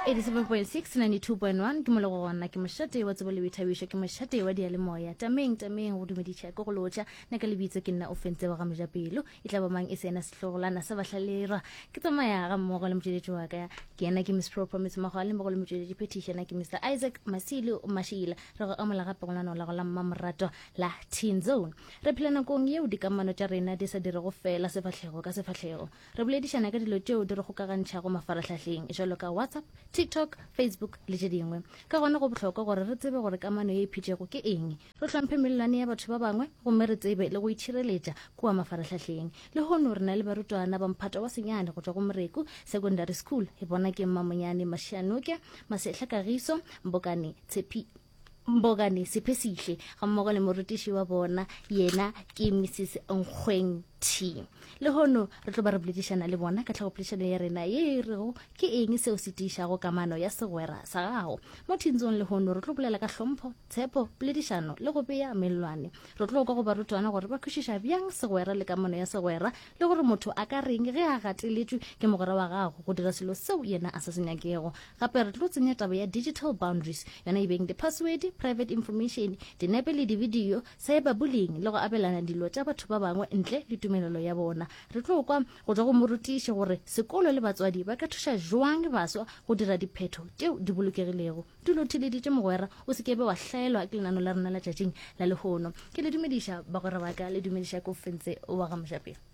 87.6 92.1 ke mo le go gona ke mošate wa tsebo le boithabišo ke mošate wa dialemoya tameng tameng go dumediša ke go lotša nna ka lebitso ke nna o fentse wa ga mojapelo e tla ba mang e se ena sehlogolana sa bahlalerwa ke tsamaya ga mmogo le motšweletši wa ka ke ena ke miss pro promise makgwa le mmogo le motšweletši phetiša na ke mr isaac masilo mashila re go amola gape go lanao la go la mmamoratwa la teen zone re phela nakong yeo dikamano tša rena di sa dirego fela sefahlego ka sefahlego Re boledišana ka dilo tšeo di re gokagantšhago mafarahlahleng jalo ka WhatsApp, TikTok, Facebook le tše dingwe. Ka gona go bohlokwa gore re tsebe gore kamano ye e phitšego ke eng, re hlomphe melelwane ya batho ba bangwe gomme re tsebe le go itšhireletša kua mafarahlahleng. Lehono re na le barutwana ba mphato wa senyane go tšwa go Moreku Secondary School, e bona ke Mmamonyane Mashianoke, Masehla Kagiso, Mbokane Tshepiso, Mbogane Siphesihle gammogo le morutiši wa bona yena ke Mrs Nkgweng T. Lehono re tlo ba re boledišana le bona ka tlhagopoledišano ya rena ye e rego ke eng seo se tiišago kamano ya segwera sa gago. Mo thintsong lehono re tlo bolela ka hlompho, tshepo, poledišano le go bea mellwane. Re tlo kwa go barutwana gore ba kwešiša bjang segwera le kamano ya segwera le gore motho a ka reng ge a gateletšwe ke mogwera wa gago go dira selo seo yena a sa se nyakego. Gape re tlo tsenya taba ya digital boundaries, yona e beng diphaswedi, private information, dinepe le dibidio, cyberbullying le go abelana dilo tša batho ba bangwe ntle le tumelelo ya bona. Re tlo kwa go tšwa go morutiši gore sekolo le batswadi ba ka thuša bjang baswa go dira diphetho tšeo di bolokegilego. Dula o theeleditše, mogwera, o se ke be wa hlaelwa ke lenano la rena la tšatšing la lehono. Ke le dumediša, bagwera ba ka, le dumediša ke o fentse wa ga mojapele.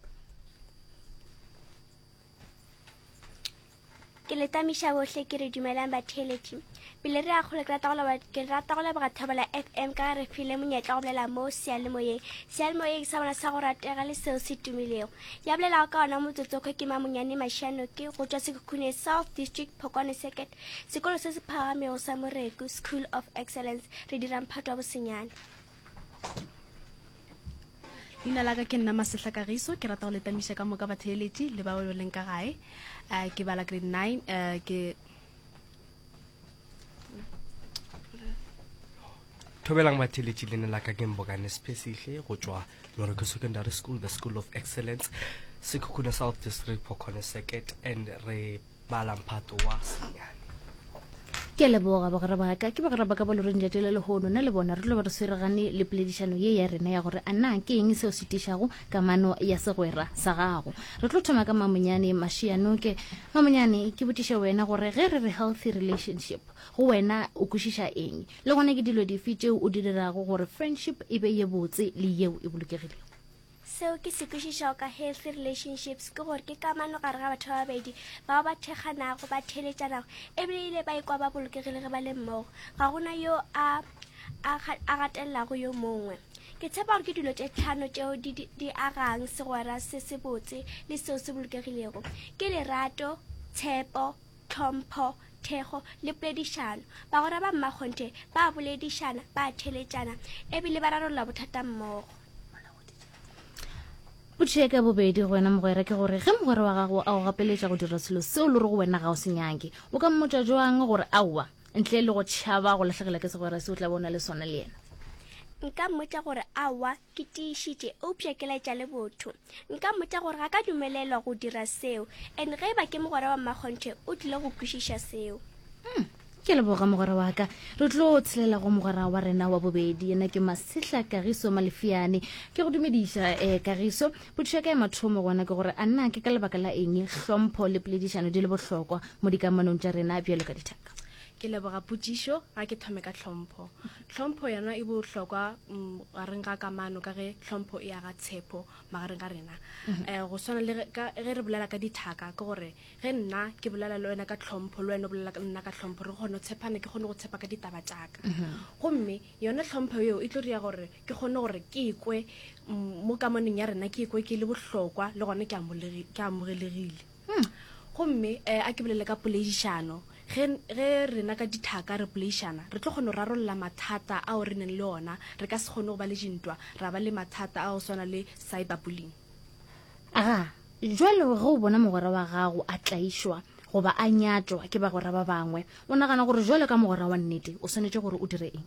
ke le tamiša bohle ke re dumelang batheeletši pele re ya kgolo ke rata go leba- ke rata go leboga thobela fm ka ge re file monyetla go bolela mo sealemoyeng sealemoyeng sa bona sa go ratega le seo se tumilego ya bolelago ka ona motsotsokgwe ke mamonyane mašianoke go tšwa sekhukhune south district phokwane circuit Sekolo se se phagamego sa Moreku, School of Excellence, re dira mphato wa bosenyane. Leina la ka ke nna Masehla Kagiso, ke rata go letamiša ka moka batheeletši le bao leng ka gae. Eh, ke bala grade 9 eh, ke thobelang batheeletši leina la ka ke mbokane sephesihle go tšwa moreko secondary school the school of excellence sekhukhune south district pokgone circuit and re Bala mphato wa senyane. Ke a leboga, bagwera ba ka. Ke bagwera ba ka ba loreng letšatši la lehono. Nna le bona re tlo be re sweregane le poledišano ye ya rena ya gore a na ke eng seo se tišago kamano ya segwera sa gago. Re tlo thoma ka Mamonyane Mašiyanoke. Mamonyane, ke botšiše wena gore ge re re healthy relationship, go wena o kwešiša eng? Le gona ke dilo dife tšeo o di dirago gore friendship e be ye botse le yeo e bolokegilego? Seo ke se kwešišago ka healthy relationships ke gore ke kamano gare ga batho ba babedi bao ba thekganago ba theletšanago ebile ile ba ikwa ba bolokegile ge ba le mmogo ga gona yo a a gatelelago yo mongwe ke tshepa gore ke dilo tše tlhano tšeo di, di, di agang segwera se se botse le seo se bolokegilego ke lerato tshepo tlhompho, thekgo le poledišano. Bagwera ba mmakgonthe ba a boledišana, ba a theeletšana e bile ba rarolla bothata mmogo. Potšo ya ka ya bobedi go wena mogwera ke gore ge mogwera wa gago a go gapeletša go dira selo seo le re go wena ga o se nyake, o ka mmotša joang gore aowa ntle le go tšhaba go lahlekela ke segwera se o tla be o na le sona le yena? Nka mmotša gore aowa Ke tiišitše, eupša ke laetša le botho. Nka mmotša gore ga ka dumelelwa go dira seo, and ge e ba ke mogwera wa Mmakgonthe, o tlile go kwešiša seo. Hmm, ke leboga mogwera wa ka. Re tlo tshelela go mogwera wa rena wa bobedi, yena ke Masehla Kagiso Malefiane. Ke go dumediša, eh, Kagiso. Potšišo ya ka ya mathomo gona ke gore, a nna ke ka lebaka la eng hlompho le poledišano di le bohlokwa mo dikamanong tša rena bjalo ka dithaka? Ke leboga potšišo. Ga ke thome ka hlompho. Tlhompho yona e bohlokwa mm, gareng ga kamano ka ge tlhompho e aga tshepo magareng ga rena um go swana le ge re bolela ka dithaka ke gore ge nna ke bolela le wena ka tlhompho le wena o bolela nna ka tlhompho re kgone go tshepana ke kgone go tshepa ka ditaba tšaka mhm. gomme yone tlhompho eo e tlo ria gore ke kgone gore ke ekwe mm, mo kamanong ya rena ke ekwe ke le bohlokwa le gone ke amogelegile hmm. gomme um a ke bolele ka poleišano ge rena ka dithaka re poleišana re tlo kgone go rarolola mathata ao re neng le ona re ka se kgone go ba le dintwa ra ba le mathata ao swana le cyber bullying a jwale ge o bona mogwera wa gago a tlaišwa goba a nyatšwa ke bagwera ba bangwe o nagana gore jwale ka mogwera wa nnete o swanetše gore o dire eng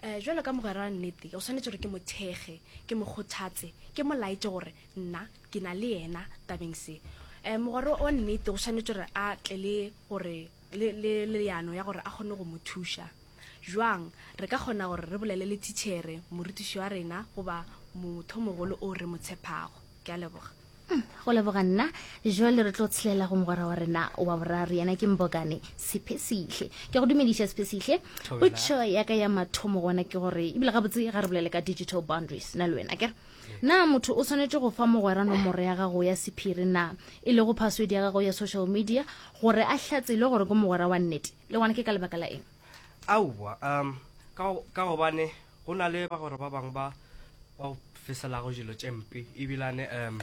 Ee, bjalo ka mogwera wa nnete, o swanetše gore ke mo thekge, ke mo kgothatse, ke mo laetše gore nna ke na le yena tabeng se. Ee, mogwera wa nnete o swanetše gore a tle le gore le, le, le leano ya gore a kgone go mo thuša. Bjang? Re ka kgona gore re bolele le thitšhere, morutiši wa rena, goba mothomogolo o re mo tshepago. Ke a leboga. Uhm, go leboga nna. Joale re tlo tshelela go mogwera wa rena wa boraro, yena ke Mbokane Sephesihle. Ke go dumediša Sephesihle. Potšo ya ka ya mathomo gona ke gore, ebile gabotse ga re bolele ka digital boundaries, na le wena kere. Na motho o swanetše go fa mogwera nomoro ya gago ya sephiri na, e lego password ya gago ya social media, gore a hlatselwe gore ke mogwera wa nnete? Le gona ke ka lebaka la eng? Aowa, um, ka, ka gobane Go na le bagwera ba bangwe ba ba go feselago dilo tše mpe ebilane um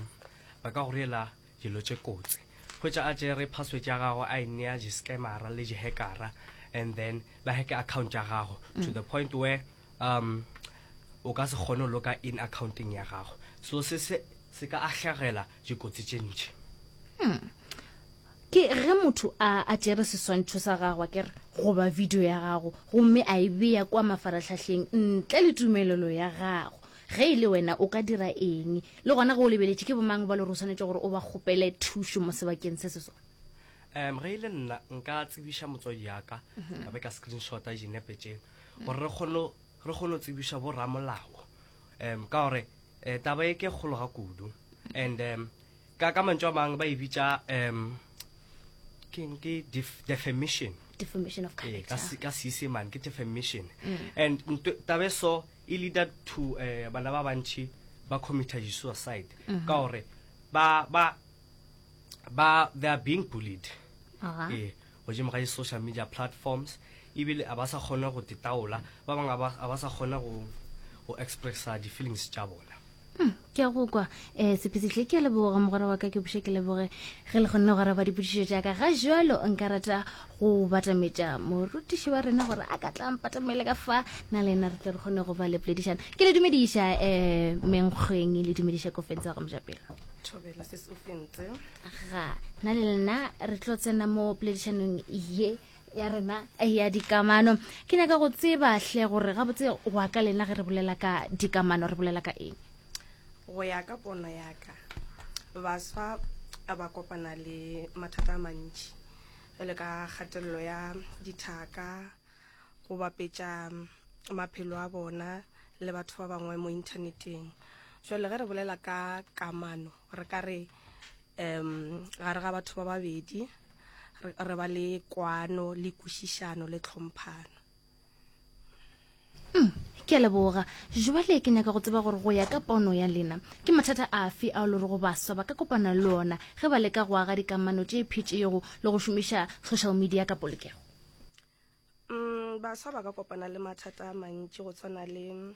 ba ka go riela dilo tše kotsi. Hwetša a tšere password ya gago a e nea di-scammera le di-hackera and then ba hacke account ya gago to the point where um o ka se kgone go loka in accounteng ya gago so se se se ka ahlegela dikotsi tše ntši. Ke ge motho a a tšere seswantšho sa gago akere goba video ya gago gomme a e bea kua mafarahlahleng ntle le tumelelo ya gago. Ge e le wena o ka dira eng? Le gona ge o lebeletše, ke bomang ba le gore o swanetše gore o ba kgopele thušo mo sebakeng se se sona? Um, ge e le nna, nka tsebiša motswadi ya ka, ka be ka screenshota dinepe tše, gore re kgone re kgone go tsebiša bo ramolao, um, ka gore um, taba e ke kgolo ga kudu, and um, ka ka mantšu a mang ba e bitša um ke eng ke def- defamation defamation of Ee, ka character se- ka seesemane ke defamation Mm. and nto- taba e so e leader to eh, bana ba bantši ba committa suicide Mhm. ka gore ba ba ba they are being bullied Aha. Eh, Godimo ga di-social media platforms ebile a ba sa kgona go titaola, ba bangwe a ba, a ba sa kgona go, go expressa di-feelings tša bona. Hmm, ke a go kwa um sephesehle ke a leboga mogwera wa ka ke buše ke leboge ge le kgonne go araba dipudišo tša ka ga jalo nka rata go batametša morutiši wa rena gore a ka tla mpatamele ka fa na le ena re tle re kgone go ba le poledišana ke le dumediša um menkgweng le dumediša kofentse wa go mojapelo thobela se se o fentse ga na le lena re tlo tsena mo poledišanong ye ya rena ya dikamano ke nyaka go tseba hle gore gabotse wa ka lena ge re bolela ka dikamano re bolela ka eng go ya ka pono ya ka baswa a ba kopana le mathata a mantši jale ka kgatelelo ya dithaka go bapetša maphelo a bona le batho ba bangwe mo inthaneteng jale ge re bolela ka kamano re ka re um gare ga batho ba babedi re re ba le kwano le kwešišano le tlhomphano Mm, ke a leboga jwale ke nyaka go tseba gore go ya ka pono ya lena ke mathata afe ao le rego baswa ba ka kopana le ona ge ba leka go aga dikamano tše phetšego le go šomiša social media ka polokego um baswa ba ka kopana le mathata a mantši go tshwana le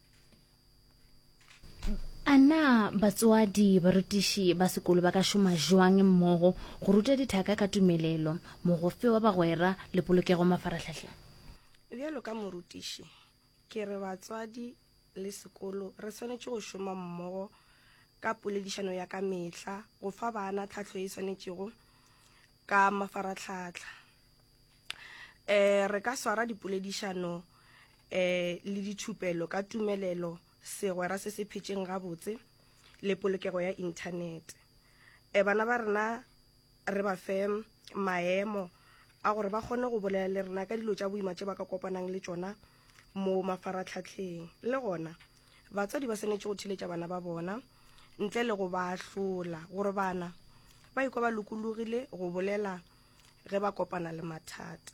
a na batswadi barutiši ba sekolo ba ka šoma jwang mmogo go ruta dithaka ka tumelelo mogofe wa bagwera le polokego mafarahlahleng bjalo ka morutiši ke re batswadi le sekolo re swanetše go šoma mmogo ka poledišano ya ka mehla go fa bana tlhahlo e swanetšego ka mafaratlhatlha eh re ka swara dipoledišano eh le dithupelo ka tumelelo segwera se se phetšeng gabotse le polokego ya inthanete eh bana ba rena re ba fe maemo a gore ba kgone go bolela le rena ka dilo tša boima tše ba ka kopanang le tšona mo mafaratlhatlheng le gona batswadi ba swanetše go theletša bana ba bona ntle le go ba ahlola gore bana ba ikwa ba lokologile go bolela ge ba kopana le mathata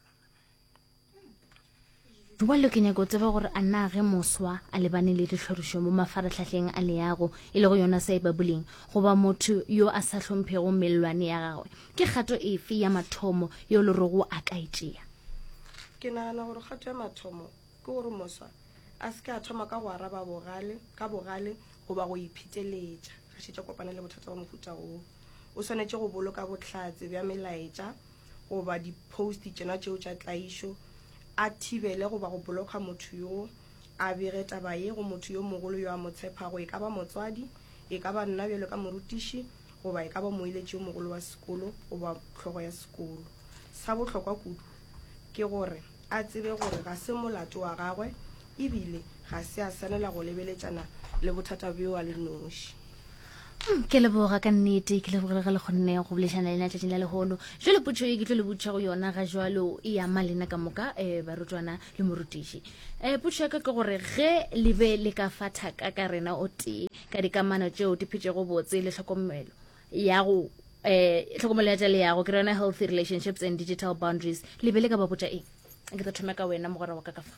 jwale ke nyako tseba gore a na ge moswa a lebane le ditlhorišo mo mafaratlhatlheng a leago e le go yona sa e babuleng goba motho yo a sa hlomphego mellwane ya gagwe ke kgato efe ya mathomo yo le rogo a ka e tšea ke nagana gore kgato ya mathomo Ke gore moswa a se ke a thoma ka go araba bogale ka bogale goba go ipheteletša a šetša kopana le bothata bja mohuta wo. O swanetše go boloka bohlatse bja melaetša goba diphosti tšona tšeo tša tlaišo, a thibele goba go blokha motho yo, a bege taba ye go motho yo mogolo yo a mo tshephago, e ka ba motswadi, e ka ba nna bjalo ka morutiši goba e ka ba moeletši yo mogolo wa sekolo goba hlogo ya sekolo. Sa bohlokwa kudu ke gore. a tsebe gore ga se molato wa gagwe e bile ga se a swanela go lebeletšana le bothata bjo a le noši. Mm, ke leboga ka nnete ke lebogile ge le kgonne go bolešana lena tšatšing la lehono jale potšo e ke tlo le botšha go yona ga jalo e ya ma lena ka moka um eh, barutwana le morutiši um eh, potšo ya ka ke gore ge le be le ka fa thaka ka rena o tee ka dikamano tšeo di phetšego botse le tlhokomelo ya go um tlhokomelo ya tša leyago ke yona healthy relationships and digital boundaries le be le ka ba botša eng ke tla thome ka wena mogwera wa ka ka fa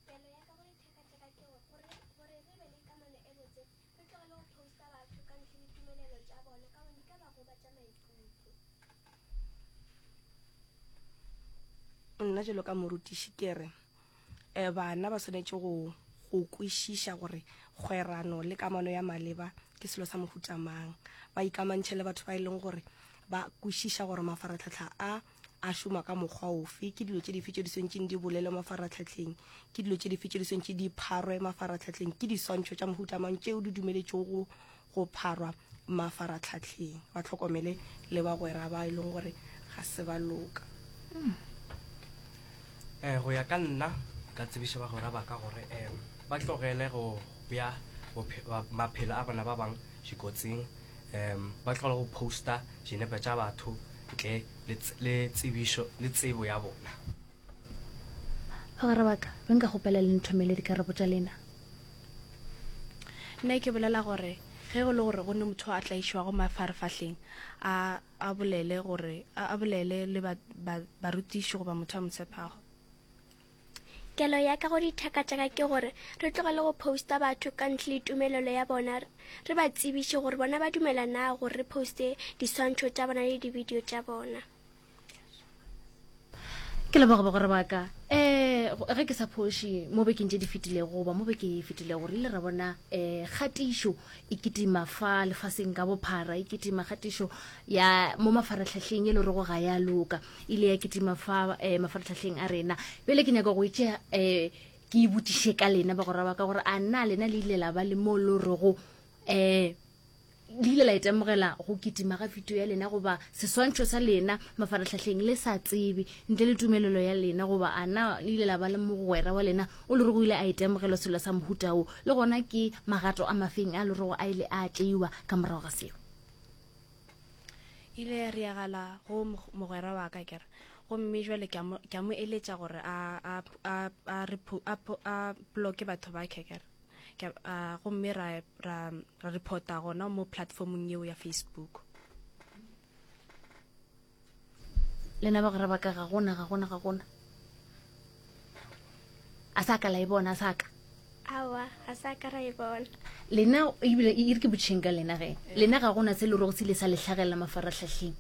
Pelo ya ka go dithekateka ke go gore gore re be le kamano e botse, re tlogele go poster batho ka ntle le tumelelo tša bona ka gobane di ka ba gobatša maikutlo. Nna jalo ka morutiši ke re eh, bana ba swanetše go go kwešiša gore kgwerano le kamano ya maleba ke selo sa mohuta mang, ba ikamantšhe le batho ba e leng gore ba kwešiša gore mafaratlhatlha a A šoma ka mokgwa ofe? Ke dilo tše dife tše di swantšeng di bolelwe mafaratlhatlheng? Ke dilo tše dife tše di swantše di pharwe mafaratlhatlheng? Ke diswantšho tša mohuta mang tšeo di dumeletšwego go pharwa mafaratlhatlheng? Ba hlokomele le bagwera ba e leng gore ga se ba loka. um go ya ka nna ka tsebiša bagwera ba ka gore um ba tlogele go bea maphelo a bona ba bang dikotsing um ba tlogele go posta dinepe tša batho ntle le tsebišo le tsebo ya bona bagwera ba ka be nka gopela le nthomele dikarabo tša lena nna ke bolela gore ge go le gore go ne motho a tlaišwago mafarefahleng a a bolele gore, a bolele le ba, ba, barutiši goba motho a mo tshepago. Kelo ya ka go dithaka tša ka ke gore re tlogele go posta batho ka ntle le tumelelo ya bona, re ba tsebiše gore bona ba dumela na gore re poste diswantšho tša bona le dibidio tša bona. ke leboga bagore ba ka um ge ke sa phoši mo bekeng tše di fetilego goba mo beke e fetilego re ile ra bona um kgatišo e kitima fa lefaseng ka bophara e kitima kgatišo ya mo mafaratlhahleng e le gorego ga ya loka e ile ya kitima fa um mafaratlhahleng a rena bjale ke nyaka go e tšea um ke e botšiše ka lena bagora ba ka gore a na lena le ile la ba le mo lo rego um Le ile la itemogela go kitima ga video ya lena goba seswantšho sa lena mafarahlahleng le sa tsebe ntle le tumelelo ya lena? Goba a na le ile la ba le mogwera wa lena o lorego ile a itemogelo selo sa mohuta wo? Le gona ke magato a mafeng a lorego a ile a tšeiwa ka morago ga seo? ile ya riagala go mogwera wa ka kere gomme jwale ke a mo eletša gore a bloke batho ba kekere uh, gomme ra, ra, ra reporta gona mo platformong yeo ya facebook lena ba gore baka ga gona ga gona ga gona a sa ka la e bona a sa ka awa a sa ka ra e bona lena ebile e re ke botšheng ka lena ge lena ga gona se le rogo se le sa letlhagelela mafaratlhatlheng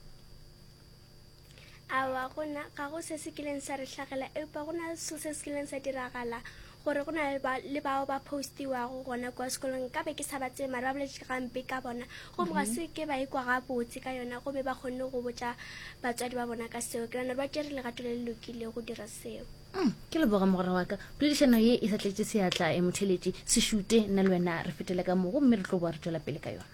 Aowa, go na ga go se se kileng sa re hlagela, eupa go na le selo se se kileng sa diragala, gore go na le ba le bao ba postiwago gona kwa sekolong ka be ke sa ba tsebe mara ba boletše gampe ka bona gomme ga se ke ba ikwa gabotse ka yona gomme ba kgonne go botša batswadi ba bona ka seo ke nana ba tšere legato le le lokile go dira seo mm, ke leboga mogora wa ka poledišano ye e sa tletše seatla e motheletše sešute nna le wena re fetele ka mogo mme re tlo boa re tšwela pele ka yona